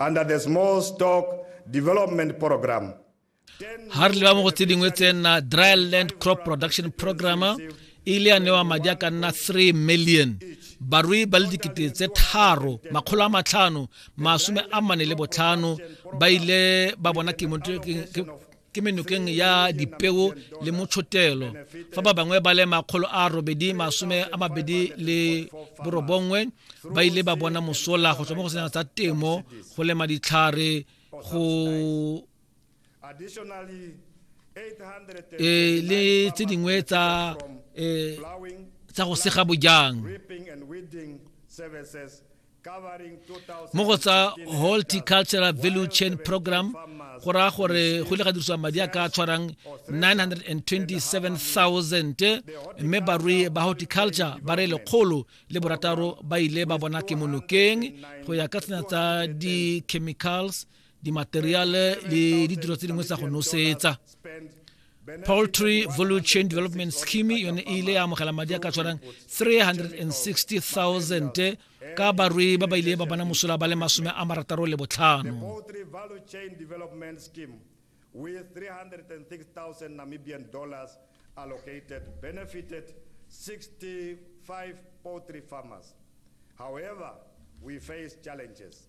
under the small stock development program. Har le ba mo go tse dingwe tse nna dry land crop production program e ile ya newa madi a ka nna 3 million barui ba le dikete tse tharo makgolo a matlhano masome a mane le botlhano ba ile ba bona ke menokeng ya dipeo le motshotelo fa ba bangwe ba le makgolo a robedi masome a mabedi le borobongwe ba ile ba bona mosola go tswa mo go sena tsa temo go lema ditlhare go e le tse dingwe tsa e, tsa go sega bojang mo go tsa horticultural value chain program go raya gore go ile ga dirisiwa madi a ka tshwarang 927000 mme barui ba horticulture ba re lekgolo le borataro ba ile ba bona ke monokeng go ya ka tsena tsa di-chemicals dimateriale le ditiro tse dingwe tsa go nosetsa poultry value chain development scheme yone e ile ya amogela madi a ka tshwanang 360000 ka barui ba ba ile ba bona mosola ba le masome a marataro le botlhano with 306,000 Namibian dollars allocated benefited 65 poultry farmers. However, we face challenges.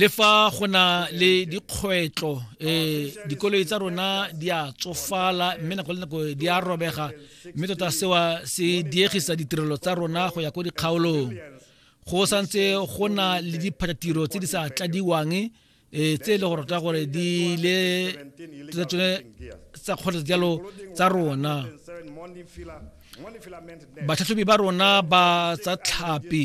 le fa go na le dikgwetlho um dikoloi tsa rona di a tsofala mme nako le nako di a robega mme tota sewa se diegisa ditirelo tsa rona go ya ko dikgaolong go santse go na le diphatatiro tse di sa tladiwang um tse e le go rata gore di le tota tsone tsa kgotsa jalo tsa rona batlhatlhobi ba rona ba tsa tlhapi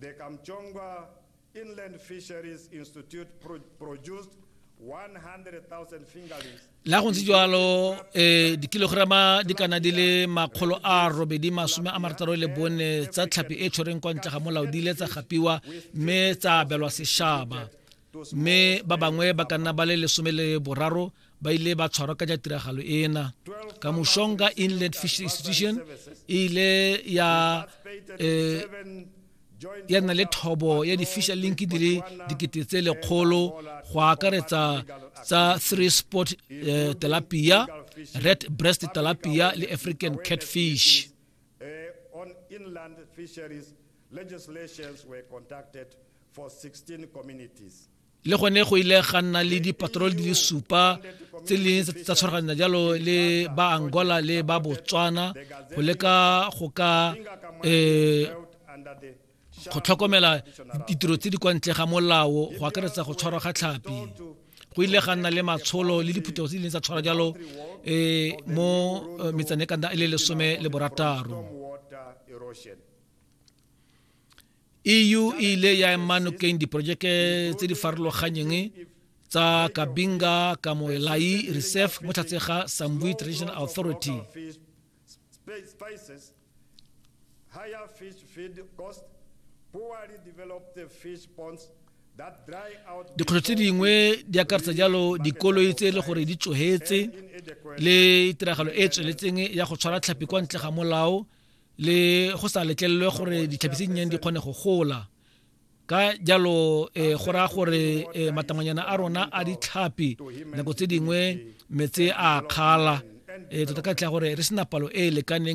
The Kamchongwa Inland Fisheries Institute produced 100,000 fingerlings le ga go ntse jalo um eh, dikilograma di kana di le makgolo a robedi masome a marataro le bone tsa tlhapi e tshwereng kwa ntle ga molao di ile tsa gapiwa mme tsa abelwa sešaba mme ba bangwe ba ka nna ba le lesome le boraro ba ile ba tshwarwa ka ja tiragalo ena ka moshonga inland fish institution e ile ya eh, ya nna le thobo ya di-fisher link di le dikete tse lekgolo go akaretsa tsa three sport eh, telapia red breast telapia le african catfish eh, on inland fisheries legislations were conducted le gone go ile ga nna le dipatrol di le supa tse leng tsa tshwaraganya jalo le ba angola le ba botswana go leka go ka um go tlhokomela ditiro tse di kwa ntle ga molao go akaretsa go tshwarwa ga tlhapi go ile ga nna le matsholo le diphuthego tse di leng tsa tshwara jalo um mo eh, metsane e kana e le lesome le borataro EU e ile ya ema nokeng diporojeke tse di farologanyeng tsa Kabinga Kamoelai Reserve mo tlhatse ga Sambui Traditional Authority. Higher fish feed cost, poorly developed fish ponds dikgwetlho tse dingwe di akaretsa jalo dikoloi tse e le gore di tsogetse le tiragalo e e tsweletseng ya go tshwara tlhapi kwa ntle ga molao le go sa letlelelwe gore ditlhapi tse dinnyane di kgone go gola ka jalo um go raya gore um matamanyana a rona a ditlhapi nako tse dingwe metse a kgala um tota ka tlha gore re sena palo e e lekaneng